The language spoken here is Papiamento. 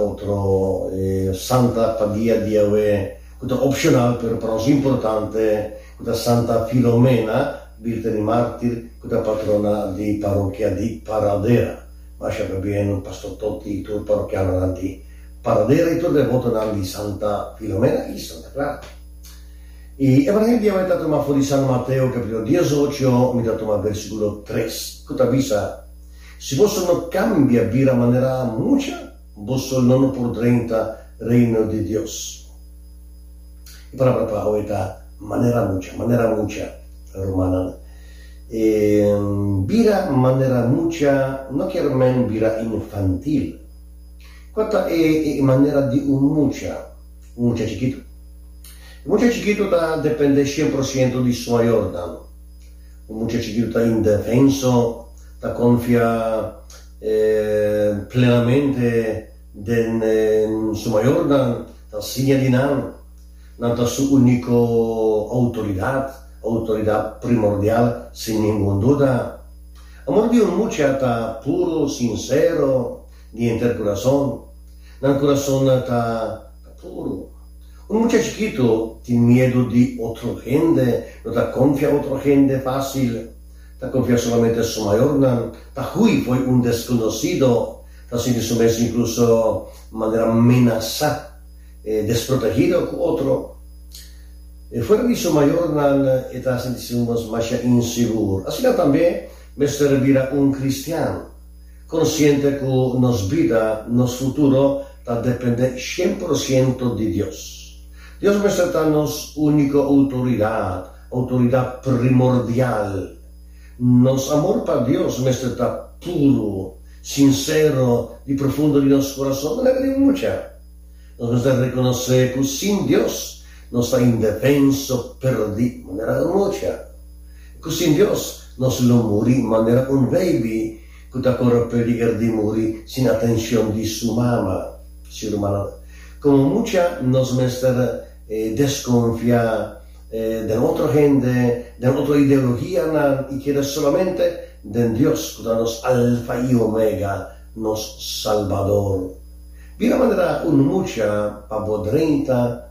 Otro santa pa dia diawe ku ta opshonal pero pa nos importante ku ta Santa Filomena, birta di mártir, ku ta patrona di parokia di Paradera. Masha ta bien Pastor Toti i tur parokianonan di Paradera i tur devotonan di Santa Filomena i Santa Clara. I e manera diawe ta tuma for di San Mateo capítulo dies ocho mi ta tuma versíkulo tres ku ta bisa, Si boso no kambia bira manera mucha, boso no no por drenta Reino di Dios. E palabra pa hoy ta manera mucha, manera mucha, rumannan. E bira manera mucha no kier men bira infantil. Kua ta e manera di un mucha, un mucha chikitu? E mucha chikitu ta depende sien por siento di su mayornan. Un mucha chikitu ta indefenso, ta konfia plenamente den su mayornan, ta siña di nan, nan ta su úniko outoridat, outoridat primordial sin ningun duda. Amor di un mucha ta puru, sinsero, di henter kurason. Nan kurasonnan ta. Ta puru. Un mucha chikitu tin miedu di otro hende, no ta konfia otro hende fásil, ta konfia solamente su mayornan, ta hui fo'i un deskonosido, ta sinti su mes inkluso manera menasá, e desprotegido ku otro. Fuera di su mayornan e ta sinti su mes masha insigur. Asina tambe mester bira un kristian. konsiente ku nos bida, nos futuro ta dependé shen por siento di Dios. Dios mester ta nos úniko outoridat, outoridat primordial. Nos amor pa Dios mester ta puru, sinsero i profundo di nos kurason. Nan a kere mucha. Nos mester rekonosé ku sin Dios nos ta indefenso, perdí. Nan a kere mucha. ku sin Dios nos lo muri manera un beibi ku ta kore peliger di muri sin atenshon di su mama. Si rumannan, komo mucha nos mester deskonfiá den otro hende, den otro ideologianan i keda solamente den Dios ku ta nos Alfa i Omega, nos Salbador. Bira manera un mucha pa bo drenta.